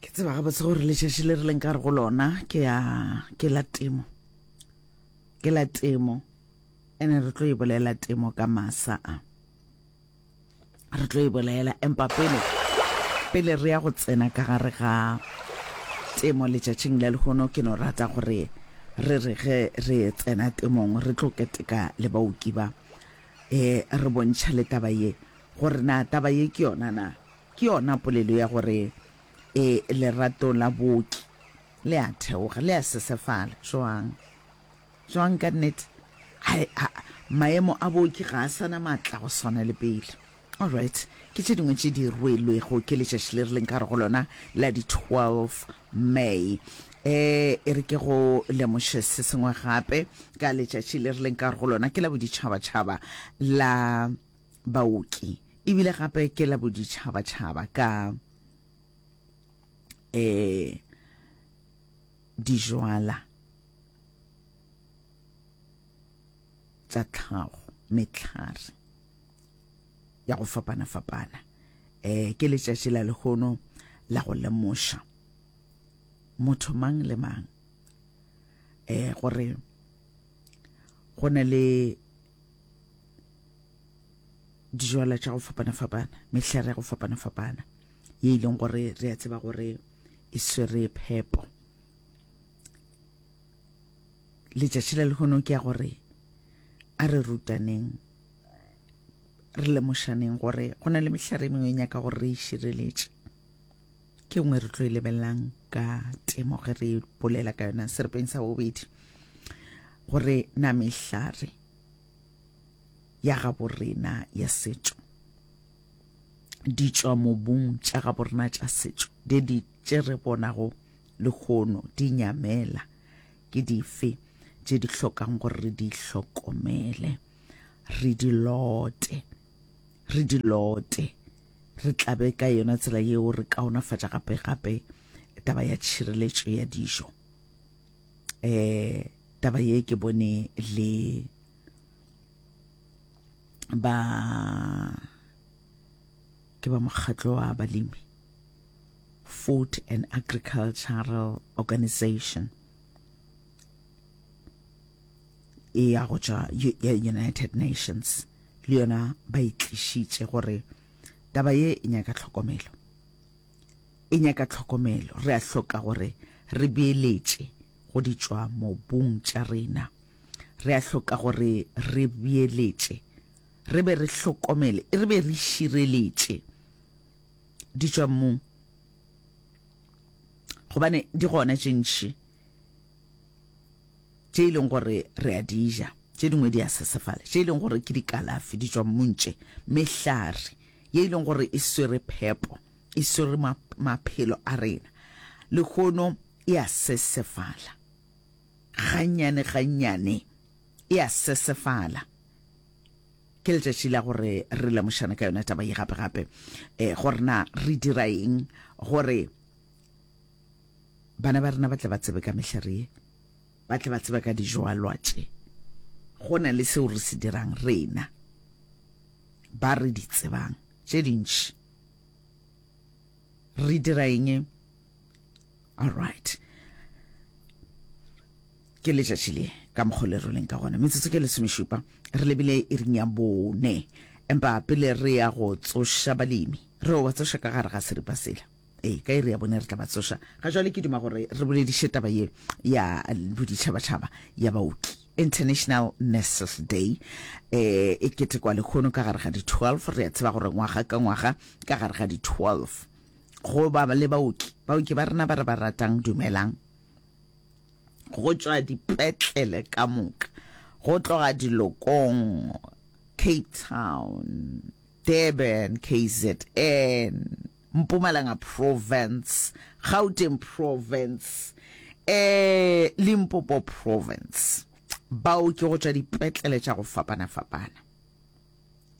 ke tseba gabotse gore letšatši le re leng ka re go lona ke ya ke la temo ke la temo ene re tlo e bolela temo ka masa a re tlo e bolela empa pele pele re ya go tsena ka gare ga temo letšatšing le legono ke no rata gore re re ge re tsena temong re tlo keteka le baoki ba um re bontšha le taba ye gore na taba ye ke yona na. Ke yona polelo ya gore e lerato la booki le a theoga, le a sesefala. Joang? Joang ka nnete? Hai, ha, maemo a booki ga a sana matla go swana le pele. All right, ke tše dingwe tše di rwelwego ke letšatši le re leng ka go lona la di 12 May. E, e re ke go lemoše se sengwe gape ka letšatši le re leng ka go lona ke la boditšhabatšhaba la baoki e bile gape ke la boditšhabatšhaba ka eh dijwala tsa tlhago metlhare ya go fapana-fapana eh ke letšatši la lehono la go lemoša motho mang le mang eh gore go na le dijwala tša go fapana-fapana mehlare ya go fapana-fapana ye e leng gore re a tseba gore e swere phepo letšatši la lehono ke ya gore a re rutaneng re lemošaneng gore go na le mehlare e mengwe e nyaka gore re e šireletše ke nngwe re tlo e lebelelang ka temo ge re bolela ka yona serepeng sa bobedi gore na mehlare ya gabo rena ya setšo di tšwa mobung tša gabo rena tša setšo di di tše re bonago lehono di nyamela ke dife tše di hlokang gore re di hlokomele re di lote re di lote, re tlabe ka yona tsela yeo re kaonafatša gape-gape taba ya tšhireletšo ya dijo. Eh, taba ye ke bone le ba ke ba mokgatlo wa balemi food and agricultural organization e ya go tšwa United Nations le yona ba itlišitše gore taba ye e nyaka tlhokomelo e nyaka tlhokomelo re a hloka gore re beeletše go di tšwa mobung tša rena re a hloka gore re beeletše re be re hlokomele re be re šireletše di tšwa mmung gobane di gona tše ntši tše e leng gore re a di ja tše dingwe di a sesefala tše e leng gore ke dikalafi di tšwa mmuntše mehlare ye e leng gore e swere phepo e swere maphelo a rena lehono e a sesefala gannyane gannyane e a sesefala ke letšatši la gore re lemošane ka yona taba ye gape gape um gore na re dira eng gore Bana ba rena ba tle ba tsebe ka mehlare ye, ba tle ba tsebe ka dijoalwa tše, go na le seo re se dirang rena ba re di tsebang tše dintši. Re dira eng? All right. ke letšatši le ka mokgwa le roleng ka gona metsotso ke lesomešupa re lebile e ring ya bone empa pele re ya go tsoša balemi re o ba tsoša ka gare ga seripa sela ee ka iri ya bone re tla ba tsoša ga jwale ke duma gore re bolediše taba ye ya boditšhabatšhaba ya baoki international nurses day eh e ketekwa lekgono ka gare ga di-12 re a tseba gore ngwaga ka ngwaga ka gare ga di-12 go ba le baoki baoki ba rena ba re ba ratang dumelang go tšwa dipetlele ka moka go tloga dilokong cape town durban kzn Mpumalanga Province, Gauteng Province, um Limpopo Province, baoki go tšwa dipetlele tša go fapana-fapana,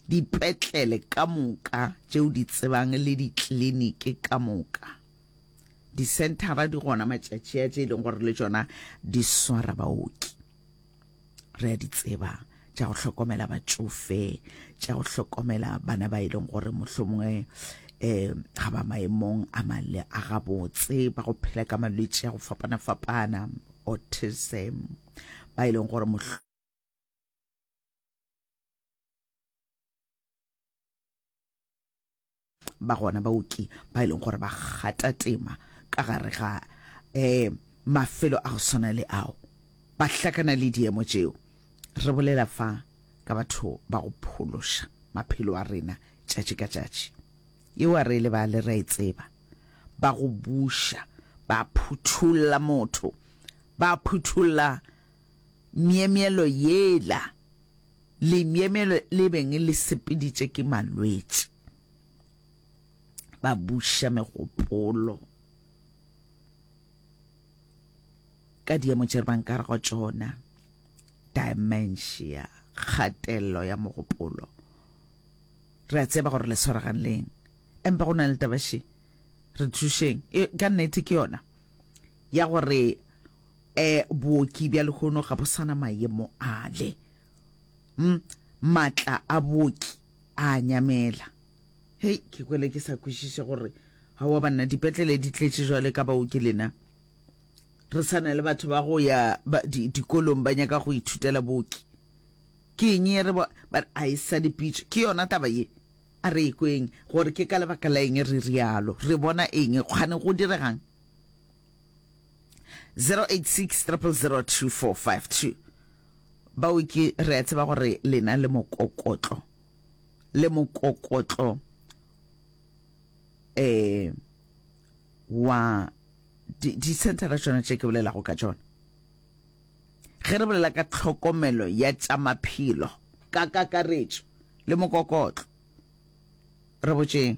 dipetlele ka moka tšeo di tsebang le ditliniki ka moka. Disenthara di gona matšatši a tše e leng gore le tšona di swara baoki. re a di tseba tša go hlokomela batšofe tša go hlokomela bana ba e leng gore mohlomongwe um ga ba maemong a male a gabotse ba go phela ka malwetse a go fapana-fapana autism ba e leng gore ba gona baoki ba e leng gore ba gata tema ka gare ga um mafelo a go swana le ao ba hlakana le diemo tšeo re bolela fa ka batho ba go phološa maphelo a rena tšatši ka tšatši yeo a re le ba le ra e tseba ba go buša ba phuthulla motho ba phuthulla myemyelo yela Lemyemyelo le beng le sepeditše ke malwetši, ba buša megopolo ka diemo tše re bang ka re go tšona, dementia, kgatelelo ya mogopolo. Re a tseba gore le swaregang leng, empa go na le taba še, re thušeng, e, ka nnete ke yona ya gore E, booki bja lehono ga bo sana mayemo ale. M, matla a booki a a nyamela. Hei, ke kwele ke sa kwešiše gore ga wa banna dipetlele di tletše jwale ka baoki lena. Re sa na le batho ba go ya ba, di, dikolong ba nyaka go ithutela booki. Ke eng ye re ba, ba a e sa dipitše. Ke yona taba ye. A re ekweng gore ke ka lebaka la eng re rialo. Re bona eng? Kgane go diregang? 0860002452 baoki re a tseba gore lena le mokokotlo le mokokotlo eh wa di-centera tšona tše ke bolelago ka tšona ge re bolela ka tlhokomelo ya tša maphelo ka kakaretšo le mokokotlo re botšeng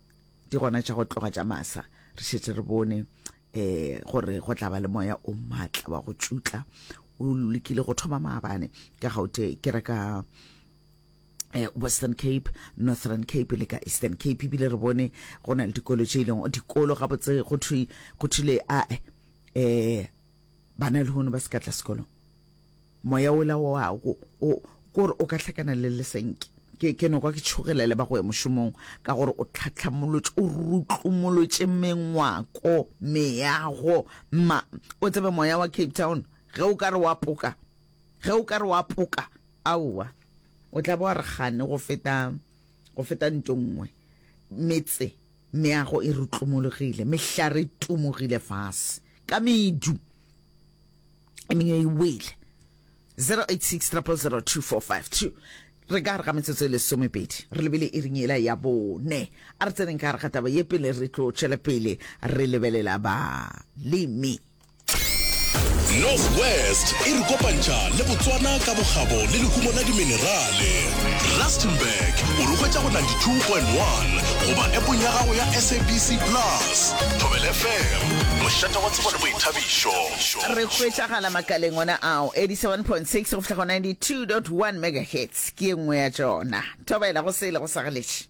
di gona tša go tloga tša masa re šetse re bone um gore go tla ba le moya o maatla wa go tšutla o lekile go thoma maabane ka gaute ke re ka eh, western cape northern cape le ka eastern cape ebile re bone go na le dikolo tše e leng dikolo gabotse go thule a um eh, Bana lehono ba se ka tla sekolong. Moya ola wa go o kore o ka hlakana le lesenke. Ke ke no kwa ke tšhogela le ba go ya mošomong ka gore o tlhatlhamolotše o rutlumolotše mengwako, meago. Mma, o tsebe moya wa Cape Town ge o ka re wa poka, ge o ka re wa poka, aowa, o tla ba wa re kgane go feta, go feta nto nngwe. Metse. Meago e rutlumologile, mehlare e tumogile fase ka medu, e mengwe e wele. 086 000 2452 re ka gare ga metsotso e lesomepedi re lebele e ring ela ya bone a re tseneng ka gare ga taba ye pele re tlo tšwela pele re lebelela balemi North West e re kopantšha le Botswana ka bokgabo le lehumo la diminerale. Rustenburg o re hwetša go 92.1 goba epong ya gago ya SABC Plus. Thobela FM, mošate wa tsebo le boithabišo. re hwetšagala makaleng ona ao 87.6 go fihla go 92.1 megahertz ke ye nngwe ya tšona thobela go sele go sa galeše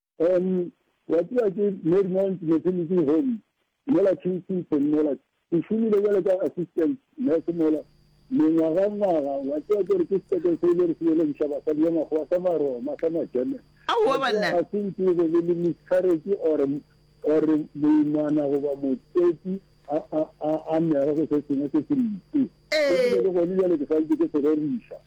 Umm wa tseba ke Marymount Maternity Home mola Kensington mola, ke šomile bjalo ka assistant nurse mola mengwaga ngwaga, wa tseba ke gore ke sepetlele se e le gore se belegiša basadi ba makgowa sa maroma sa ma German, Aowa wa tseba banna. ga se nke e be le le miscarriage or or moimana goba motswetsi a a a a mega go se sengwe se se mpe, se ke be Ee. le gone bjale ke sa ntše ke se reriša.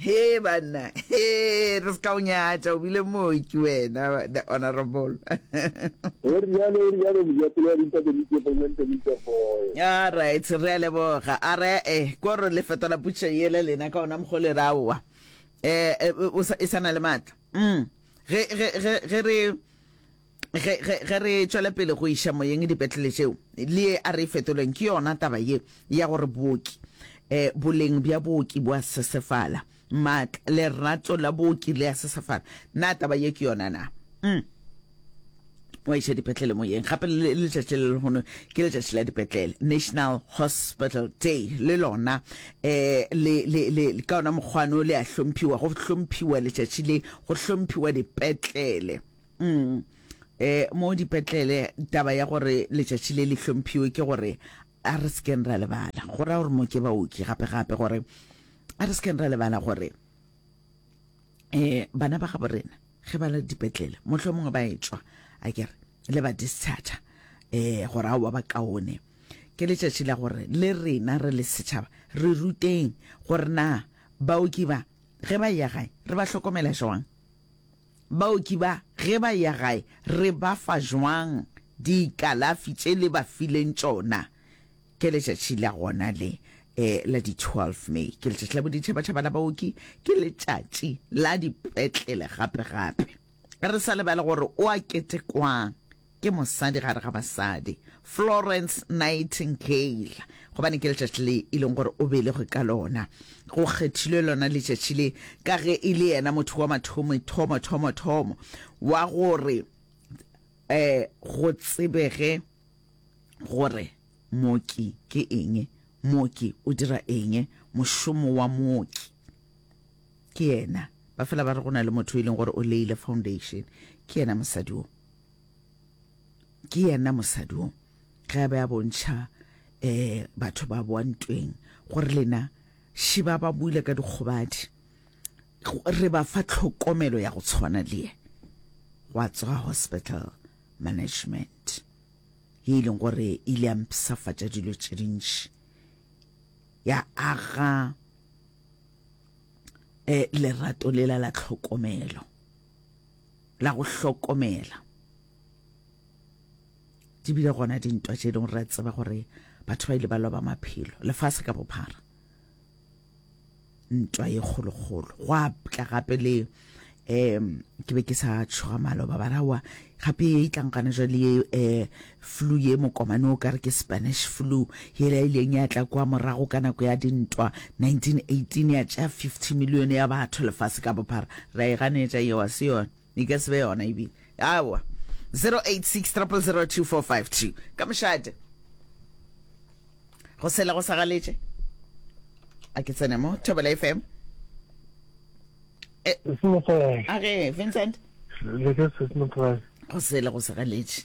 Hee banna, hee re se ka o nyatša, o bile mooki wena, the honourable. Go rialo, go rialo mojapele wa dimpa tse dintši go nne ntse ntse goe. All right, re a leboga. A re e, ko re le fetola putšo yela lena ka ona mokgole ra wa. Eh, e sa na le matla. Mm. Ge, ge, ge, ge re, ge, ge, ge re tšwela pele go iša moyeng dipetlele tšeo le ye a re e fetolweng ke yona taba ye ya gore booki eh, boleng bja booki bo a sesefala maatla lerato la booki le a sesefala na taba ye ke yona na mm. wa iša dipetlele moyeng gape le letšatši le lehono ke letšatši la dipetlele national hospital day le lona eh, le, le, le, ka ona mokgwano le a hlomphiwa go hlomphiwa letšatši le go hlomphiwa dipetlele Mm. E, mo dipetlele taba ya gore letšatši le le hlomphiwe ke gore a re sekeng ra lebala go raya gore mo ke baoki gape gape gore a re sekeng ra lebala gore um bana ba gabo rena ge ba le dipetlele motlho mongwe ba etswa a kere le ba discharge um gore a wa ba kaone ke letšatši la gore le rena re le setšhaba re ruteng gore na baoki ba ge ba ya gae re ba hlokomela jwang Baoki ba, ge ba ya gae, re ba fa jwang dikalafi tše le ba fileng tšona? Ke letšatši la gona le, la di 12 May. Ke letšatši la boditšhabatšhaba la baoki. Ke letšatši la dipetlele gape-gape. Re sa lebale gore o a ketekwang. Ke mosadi gare ga basadi, Florence Nightingale, gobane ke letšatši le e leng gore o belegwe ka lona. Go kgethilwe lona letšatši le ka ge e le yena motho wa mathomo thomo thomo thomo wa gore um go tsebege gore mooki ke eng, mooki o dira eng, mošomo wa mooki ke yena. Ba fela ba re go na le motho e leng gore o leile foundation, ke yena mosadi o. ke yena mosadi o ge a be a bontšha um batho ba boa ntweng gore lena šiba ba buile ka dikgobadi re ba fa tlhokomelo ya go tshwana le ye gwa tswa hospital management ye e leng gore e ile ya mpisafatša dilo tše dintši ya aga um lerato lela la tlhokomelo la go hlokomela di bile gona dintwa tše dingwe re tseba gore batho ba ile ba loba maphelo lefase ka bophara ntwa ye kgolokgolo go a tla gape le um ke be ke sa tšhoga maloba barawa gape ye e tlang gane jale ye um Flu ye mokomane o ka re ke Spanish Flu, yela e ileng ya tla kwa morago ka nako ya dintwa 1918 ya tšea 50 milione ya batho lefase ka bophara. Ra e ganetša yeo, a se yona? E ka se be yona ebile. Aowa. 086 000 2452 ka mošate. Go sele go sa galetše. A ke tsene mo Thobela FM. Eh, Sesimokae. a re Vincent, Le ke sesimokae. go sele go sa galetše.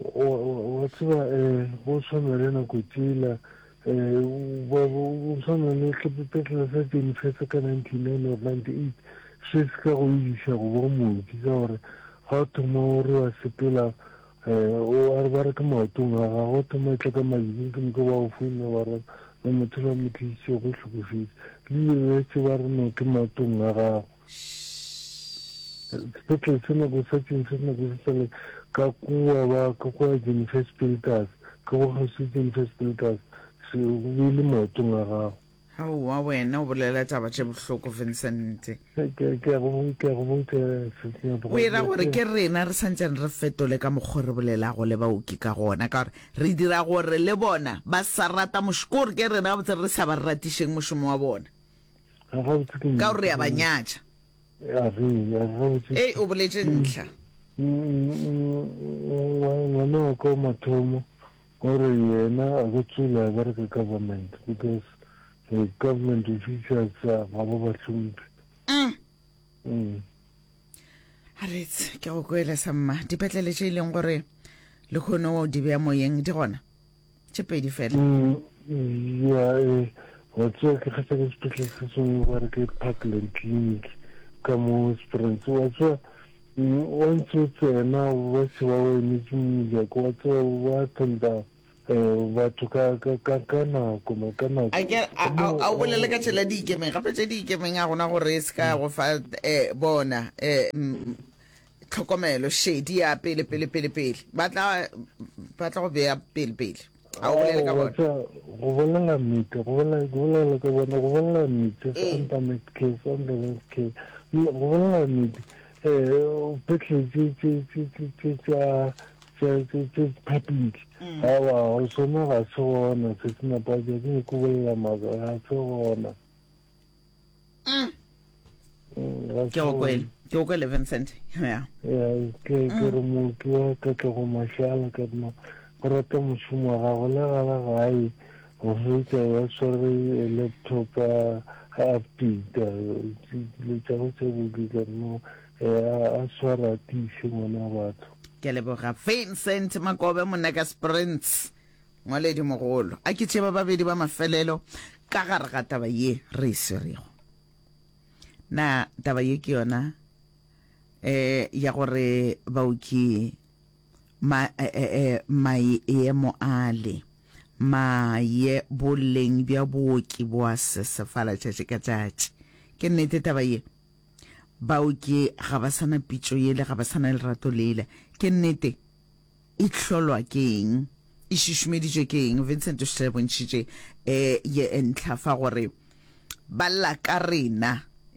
Wa tseba go tshwana le nako tsela go tshwana le sepetlele sa Jenifetse ka 99 or 98 se se ka go ibiša go bo mooki ka gore ga o thoma o re wa sepela o a re ba re ke maotong a gago o thoma e tla ka malibing ke moka ba go founa ba re le motho la mo tlišitse go hlokofetse le ile le tseba re no ke maotong a gago sepetlele se nako sa tšeng se nako se sale ka kua ba ka kua jennifer spiltas ka go gausi jennifer spiltas se be le maotong a gago aowa wena o bolela taba tše bohloko vincent o ira gore ke rena re santsane re fetole ka mokgwa re bolelago le baoki ka gona ka gore re dira gore le bona ba sa rata mošo ke gore ke rena gabotse re sa ba ratišeng mošomo wa bona ka gore re a ba nyatša ei o boletše ntlha ngwana wa ka mathomo o re yena a go tsula ba re ka government because the government officials ga ba ba hlompe mm. mm. a retse ke go kwele sa mma dipetlele tše e leng gore le kgone o di beya moyeng di gona tše pedi fela ya e wa tswa ke kgetha ke sepetlele se sengwe ba re ke parkland clinic ka mo sprance wa tswa wa ntse o tsena ba se ba o emetse mojako wa tswa ba tenda batho ka nako ma ka nako a o bolele ka tšela di ikemeng gape tše di ikemeng a gona gore e se ka go fa bona um tlhokomelo šedi ya pele pele pele pele ba tla ba tla go beya pele pele a o bolele ka bona go bolela nnete go bolela go bolela ka bona go bolela nnete santa met ke santa met ke go bolela nnete eh petle tse tse tse tse tse tsa tse tse tse phapile ha wa o sona ga se gona se sina pa ke ke bolela maga ga se gona mm. mm ke go kwele ke go kwele vincent ya ke mm. re motho wa katlego mashala ka dina go rata mošomo wa gago le gala gae go fetsa ya swere laptop a updata dilo tsa go tse bodi ka dina a swara tiše ngwana batho ke leboga vincent makobe monaka sprints Ngwaledimogolo, a ke tseba babedi ba mafelelo ka gare ga taba ye re e swerego. Na taba ye ke yona eh ya gore baoki ma eh, eh, eh maemo ale ma ye boleng bja booki boa sesefala tšatši ka tšatši. Ke nnete taba ye? Baoki ga ba sana pitšo yele, ga ba sana lerato lele. Ke nnete? e hlolwa ke eng, e šišimeditšwe ke eng. Vincent o šetše re bontšhitše e ye e ntlha fa gore ba lla ka rena,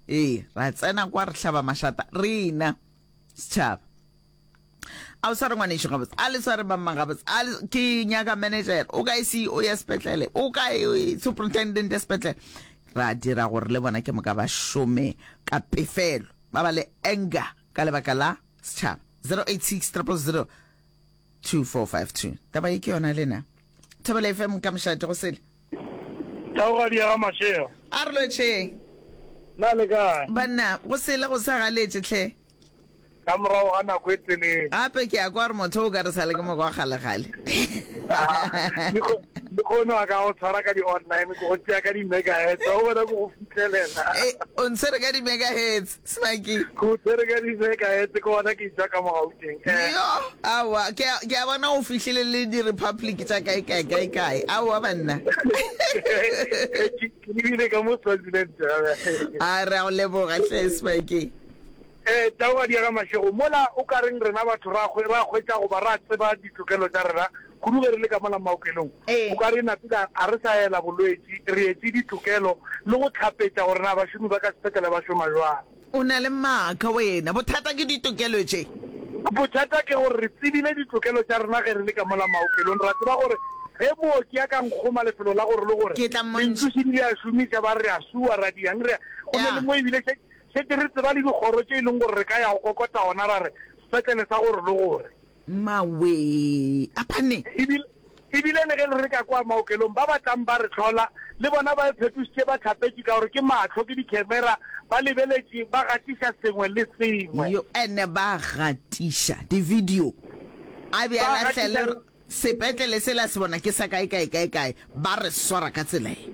ee ra tsena kwa re hlaba mašata rena setšhaba a o sa re ngwanešo gabotse a le sa re bamma gabotse a ke nyaka manager o kae ceo ya sepetlele o kae e, superintendent ya sepetlele ra dira gore le bona ke moka ba šome ka pefelo ba ba le anger ka lebaka la setšhaba 086 2452 taba e ke yona lena thobela fm ka mošate go sele taogadi ya ga mashego a re lotšheng na le kae banna go sele go sa galetše tlhe ka morago ga nako e telele gape ke ya kwa re motho o ka re sa le ke moko wa galegale le kgone wa ka go tshwara ka di-online ko go tšea ka di-megahertz o bona ko go fitlhelela Eh, o ntshwere ka di-megahertz Smaki. Ke o tshwere ka ditseka etse ke gona ke itsa ka mo gauteng eh. yo awa ke a- ke a bona o fihlile le di-republic tša kae kae kae kae aowa banna Eh, ke ke lebile ka mo swaziland eh. a re a go leboga hle smaki Eh, tau ga diega mašego mola o ka reng rena batho ra hwe- ra hwetša goba ra tseba ditokelo tša rena Kudu ge re le ka mola maokelong, o ka re napile ga re sa ela bolwetši, re etše ditokelo le go hlapetša gore na bašomi ba ka sepetlele ba šoma bjang. O na le maaka wena. Bothata ke ditokelo tše. Bothata ke gore re tsebile ditokelo tša rena ge re le ka mola maokelong. Ra tseba gore ge mooki a ka nkgoma lefelo la gore le gore lenthuši di le a šomiša, ba re re a sua, ra di yang, re ya go na le mo e bile šetše re tseba le dikgoro tše e leng gore re ka ya go kokota gona ra re sepetlele sa gore le gore. Mmawee! A phane! Ebile, ebile le ge le re ka kwa maokelong, ba ba tlang ba re hlola, le bona ba iphetošitše ba hlapetše ka gore ke mahlo, ke dikhemera, ba lebeletše, ba gatiša sengwe le sengwe. Yo, ene ba gatiša divideo. A be a Ba lahla le gatiša. re, Sepetlele sela se bona ke sa kae, kae, kae, kae. Ba re swara ka tsela ye.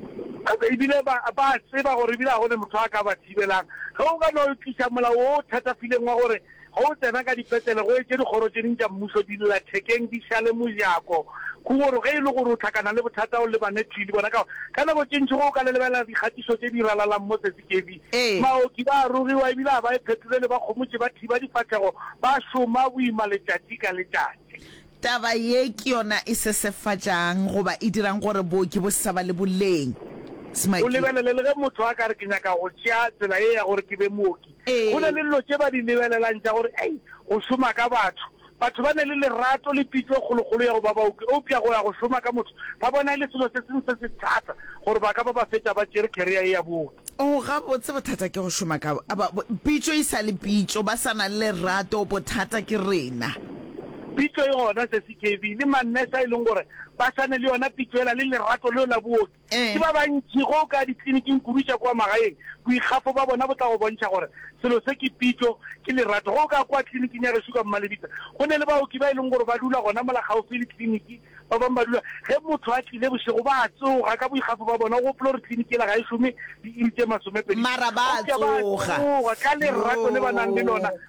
Ebile ba, ba a tseba gore ebile ga go ne motho a ka ba thibelang. Ge o ka no tliša molao wo o thatafileng wa gore Ge o tsena ka dipetlele, go etše dikgoro tše ding tša mmušo di lla thekeng di šale mojako. Kugoro ge e le gore o hlakana le bothata o lebane thwi le bona ka gore ka nako tše ntši go o ka le lebelela dikgatišo tše di ralalang mo Tsetsikebi. Ee. Baoki ba a rugiwa e bile ga ba e phetole le bakgomotši ba thiba difahlego ba šoma boima letšatši ka letšatši. Taba ye ke yona e sesefatšang goba e dirang gore booki bo se sa ba le boleng. O Smakee. lebelele le ge motho a ka re ke nyaka go tšea tsela ye ya gore ke be mooki, Go na le dilo tše ba di lebelelang tša gore ei, go šoma ka batho. Batho ba na le lerato le pitšo e kgolokgolo ya go ba baoki, eupša go ya go šoma ka motho ba bona e le selo se sengwe se se thata gore ba ka ba ba fetša ba tšere career ye ya booki. Oo, gabotse bothata ke go šoma ka pitšo e sa le pitšo, ba sa na le lerato, bothata ke rena. Pitšo e gona, Sesi Kevin, le ma-nurse a e leng gore ba sa na le yona pitšo yela le lerato leo la booki. Ke ba bantši go ka ditliliniking kudu tša kua magaeng, boikgafo bja bona bo tla go bontšha gore selo se ke pitšo, ke lerato. Ge o ka kua tliliniking ya gešo ka Mmalebitla, go ne le baoki ba e leng gore ba dula gona mola kgaufsi le tliliniki. Ba bangwe ba dula, ge motho a tlile bošego, ba a tsoga ka boikgafo bja bona. O gopole gore tliliniki yela ga e šome diiri tše masomepedi. Mara ba a tsoga ka lerato le ba nang le lona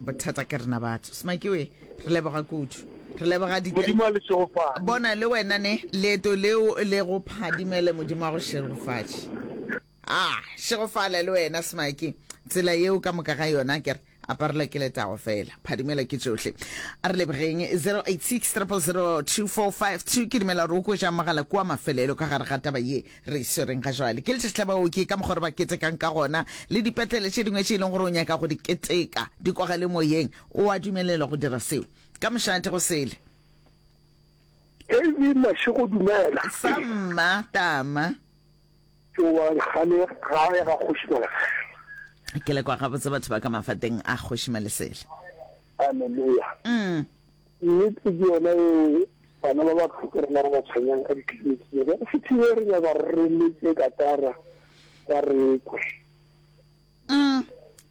bothata ke rena batho smakiwe re leboga kudu re leboga bona le wena ne leeto leo le go phadimele modimo wa go šegofatše a ah, šegofala le wena smaki tsela yeo ka moka ga yona kere aparelwa ke letago fela phadimela ke tsohle a re lebogeng 086 ke dumela gore o kwetša mogala kua mafelelo ka gare ga taba ye Re swereng ga jwale ke letšatši la baoki ka mokgwa re ba ketekang ka gona, le dipetlele tše dingwe tše e leng gore o nyaka go di keteka di kwagale moyeng, o a dumelelwa go dira seo. Ka mošate go sele. Davy Mashego, Dumela. Sa mma Tama. Ke wa gane gae ga Kgoši Malesela. Ke le kwa gabotse batho ba ka mafateng a Kgoši Malesela. Haleluya. Mm. Nnete ke yona yeo, bana ba ba tlhoka rena re ba tshwenyang ka ditliliniki tse. Jwale se thibele re nyaka gore re leke katara ba re kwe. Umm,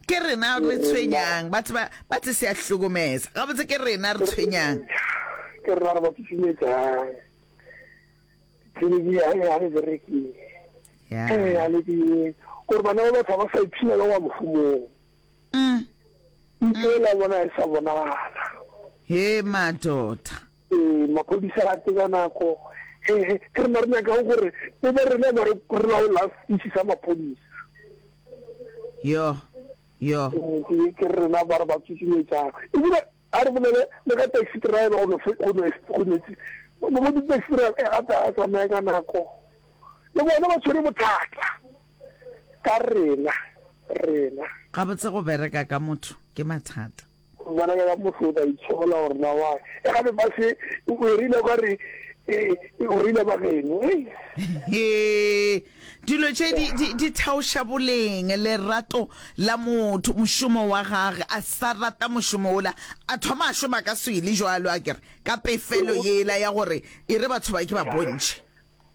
ke rena re tshwenyang, ba tseba, ba tse se ya hlokomeza. Gabotse ke rena re tshwenyang. Ke rena re ba tsutsumetsang. Ditliliniki ya ya re berekeng. Yeah. Eh, ya le ke gore bana ba batho ba sa ipshina ba wa mofumong. Ntlo ela bona e sa bonagala. Hee madoda. Ee, maphodisa a tseba nako. Hehe, ke re mare nyaka go gore e be rena ba re re la o last species sa maphodisa. Yo, yo. Ke ke re rena ba re ba tsusumetsa. E bile a re bolele le ka taxi driver go no go no go no tsi. Mo di taxi driver e ga ta tsamaya ka nako. Le bona ba tshwere bothata. ka rena, rena. Gabotse go bereka ka motho ke mathata. Go bereka ka motho o tla itshola gore na wa. E gape ba se o e rile ka re e e o rile ba geno. He, dilo tše di, di, di thaoša boleng, lerato la motho, mošomo wa gage. A sa rata mošomo ola, a thoma a šoma ka swele, jwalo a kere, ka pefelo yela ya gore e re batho ba ke ba bontšhe.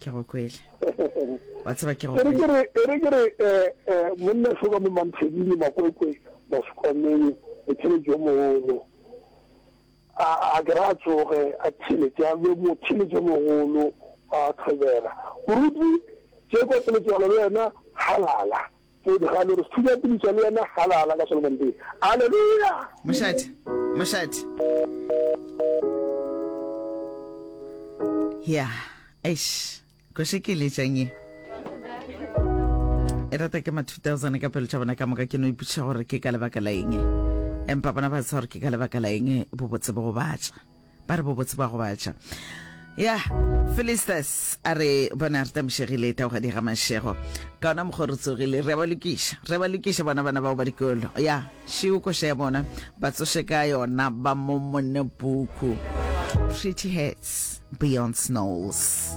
ke go kwele wa tseba ke go ere ke re ere ke re eh eh monna shoka mo mamphedile makwekwe mo sekomeng e tshele jo mogolo a a ke ra tsoge a tshele tsa be mo tshele jo mogolo a thobela moruti tse kwa pele tswalo le wena halala Podi, ga le re studio piliša le yena ga la la ka Solomon Bay. Aleluya! Mošate, mošate. Ya, eish, ko še ke letšang ye. E rata ke ma 2000 ka pelo tša bona ka moka ke no ipuša gore ke ka lebaka la eng. Empa bona ba sa gore ke ka lebaka la eng bo botse bo go batša. ba re bobotse ba gobatša ya Philistus a re bona re tamošegile taogadi ga mašego ka ona mokgwa re tsogile re ba lokiša re ba lokiša bona bana bao ba dikolo ya šeo koša ya bona ba tsoše ka yona ba momone puku pretty hats beyond snows